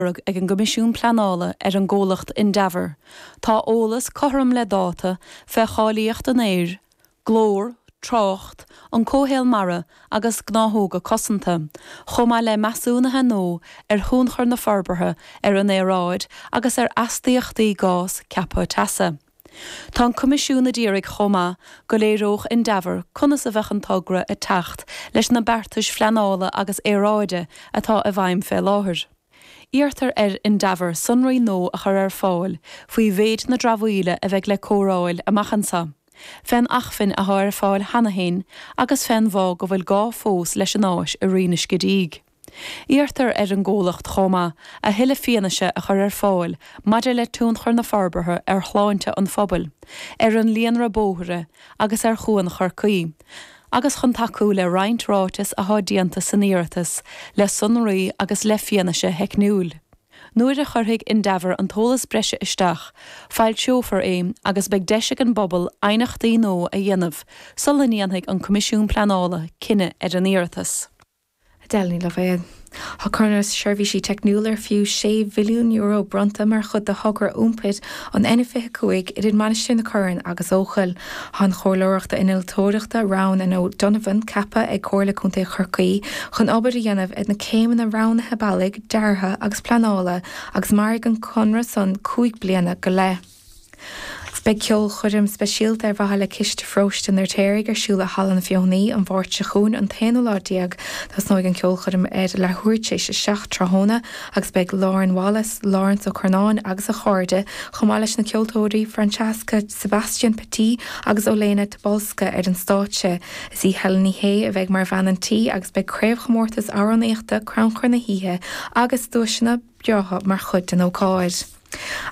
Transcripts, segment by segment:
lorg ag an gCoimisiún Pleanála ar an gcomhlacht Endeavour, tá eolas cothrom le dáta fé cháilíocht an aeir, glór, trácht, an comhshaol mara agus gnáthóga cosanta, chomh maith le measúnuithe nua ar thionchar na forbartha ar an aeráid agus ar astaíochtaí gás ceaptha teasa. Tá an Coimisiún ag iarraidh chomh maith go léireodh Endeavour conas a bheadh an togra ag teacht leis na beartais phleanála agus aeráide atá i bhfeidhm fé láthair. Iarrtar ar Endeavour sonraí nua a chur ar fáil faoi mhéid na dramhaíola a bheidh le cóireáil amach anseo, fén acmhainn atá ar fáil cheana féin agus fén bhfáth go bhfuil gá fós leis an áis i Rinn an Scidígh. Iarrtar ar an gcomhlacht chomh maith a thuilleadh fianaise a chur ar fáil maidir le tionchar na forbartha ar shláinte an phobail, ar an líonra bóithre agus ar Chuan Chorcaí, agus chun tacú le roinnt ráiteas athá déanta san iarratas le sonraí agus le fianaise theicniúil. Nuair a chuirfidh Endeavour an t-eolas breise isteach, foilseofar é agus beidh deis ag an bpobal aighneachtaí nua a dhéanamh sula ndéanfaidh an Coimisiún Pleanála cinneadh ar an iarratas. Edel Ní Loibhéad. Tá Conradh Seirbhísí Teicniúla ar fiú €6 mhilliún bronnta mar chuid de thogra iompair an N25 idir Mainistir na Corann agus Eochaill. Tá an chomhairleoireacht innealtóireachta Roughan and O'Donovan ceaptha ag Comhairle Contae Chorcaí chun obair a dhéanamh ar na céimeanna roghnaithe bealaigh, deartha agus pleanála agus mairfidh an conradh san cúig bliana go leith. Beidh ceolchoirm speisialta ar mhaithe le Ciste Pharóiste an Fheirtéaraigh ar siúl i Halla na Feothanaí an Mháirt seo chugainn, an t-aonú lá déag. Tosnóidh an ceolchoirm ar leathuair tar éis a seacht tráthnóna agus beidh Lauren Wallace, Laurence Ó Curnáin agus a chairde, chomh maith leis na ceoltóirí Francesca Sebastian Petit agus Olena Tobolska ar an stáitse. Is í Helen Ní Shé a bheidh mar bhean an tí agus beidh craobhchomórtas amhránaíochta, crannchur na hoíche agus duaiseanna breátha mar chuid den ócáid.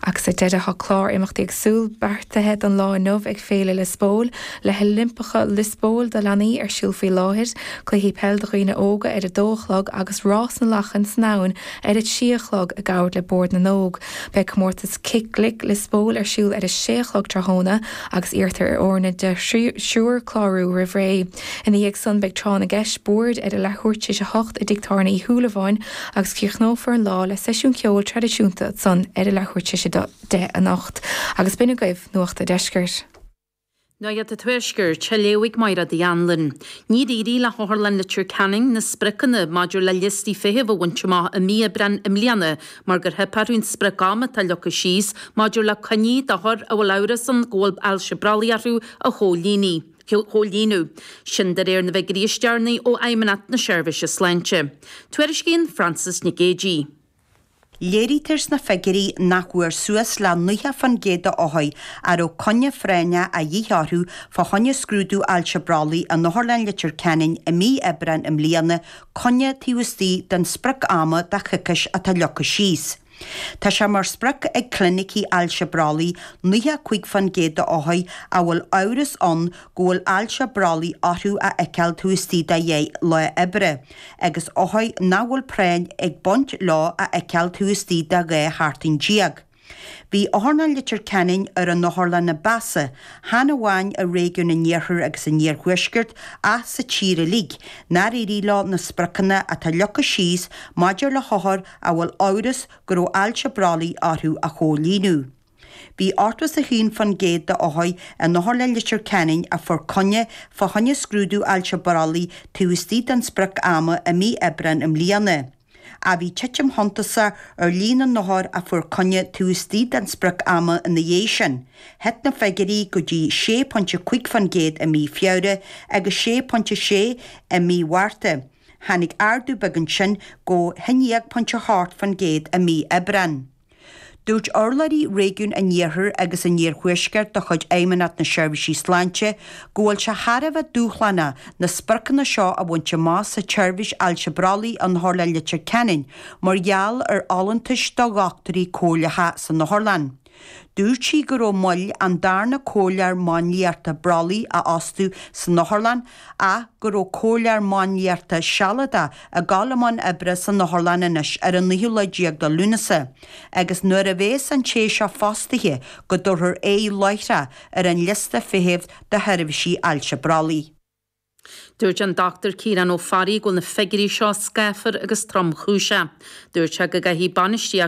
Agus ar deireadh tá clár imeachtaí éagsúil beartaithe don lá inniu ag Féile Liospóil, le hOilimpeacha Liospóil do leanaí ar siúl faoi láthair, cluichí peil do dhaoine óga ar a dó a chlog agus rás na lachain san abhainn ar a trí a chlog i gcabhar le Bord na nÓg. Beidh comórtas Cic Glic Liospóil ar siúl ar a sé a chlog tráthnóna agus iarrtar ar fhoirne de thriúr clárú roimh ré. Ina dhiaidh san beidh tráth na gceist boird ar a leathuair tar éis a hocht i dTig Tábhairne Uí Shúilleabháin, agus críochnófar an lá le seisiún ceoil traidisiúnta ansan ar a leathuair tar éis a deich anocht. Agus b'in agaibh Nuacht a' Deiscirt. Nuacht a' Tuaiscirt, a léifidh Máire Dinny Wren. Níor éirigh le hOtharlann Leitir Ceanainn na spriocanna maidir le liostaí feithimh a bhaint amach i mí Aibreáin i mbliana mar gur theip orthu an spriocam atá leagtha síos maidir le coinní d'othair a bhfuil amhras ann go bhfuil ailse brollaigh orthu a chomhlíonadh. chomhlíonadh. Sin de réir na bhfigiúirí is deireanaí ó Fheidhmeannacht na Seirbhíse Sláinte. Tuairiscíonn Frances Nic Géadaigh. Léirítear sna figiúirí nach bhfuair suas le 90% de othair a raibh coinne phráinneach a dhíth orthu fá choinne scrúdú ailse brollaigh in Otharlann Leitir Ceanainn i mí Aibreáin i mbliana, coinne taobh istigh den sprioc-ama de choicís atá leagtha síos. Tá sé mar sprioc ag clinicí ailse brollaigh 95 fán gcéad d'othair a bhfuil amhras ann go bhfuil ailse brollaigh orthu a fheiceáil taobh istigh de dheich lá oibre, agus othair nach bhfuil práinn ag baint leo a fheiceáil taobh istigh de dhá sheachtain déag. Bhí Otharlann Leitir Ceanainn ar an otharlann ba mheasa, chan amháin i réigiún an Iarthair agus an Iarthuaiscirt ach sa tír uilig, nár éirigh leo na spriocanna atá leagtha síos maidir le hothair a bhfuil amhras go raibh ailse brollaigh orthu a chomhlíonadh. Bhí 81% de othair in Otharlann Leitir Ceanainn a fuair coinne fá choinne scrúdú ailse brollaigh taobh istigh den sprioc ama i mí Aibreáin i mbliana, ach bhí titim shuntasach ar líon na n-othar a fuair coinne taobh istigh den sprioc ama ina dhiaidh sin, thit na figiúirí go dtí 6.5% i mí Feabhra agus 6.6 i mí Mhárta, Tháinig ardú beag ansin go dtí 9.8% i mí Aibreán. Dúirt urlabhraí réigiún an iarthair agus an iarthuaiscirt de chuid Fheidhmeannacht na Seirbhísí Sláinte go bhfuil sé thar a bheith dúshlánach na spriocanna seo a bhaint amach sa tseirbhís ailse brollaigh in Otharlann Leitir Ceanainn mar gheall ar fholúntais do dhochtúirí comhairleacha san Otharlann. Dúirt sí go raibh moill an darna comhairleoir máinliachta brollaigh a fhostú san otharlann ach go raibh comhairleoir máinliachta sealadach ag gabháil i mbun oibre san otharlann anois ar an naoú lá déag de Lúnasa agus nuair a bhéas an té seo fostaithe go dtabharfar aghaidh láithreach ar an liosta feithimh do sheirbhísí ailse brollaigh. Dúirt an Dr Ciarán Ó Fearraigh go bhfuil na figiúirí seo scáfar agus tromchúiseach. Dúirt sé go gcaithfidh bainistíocht.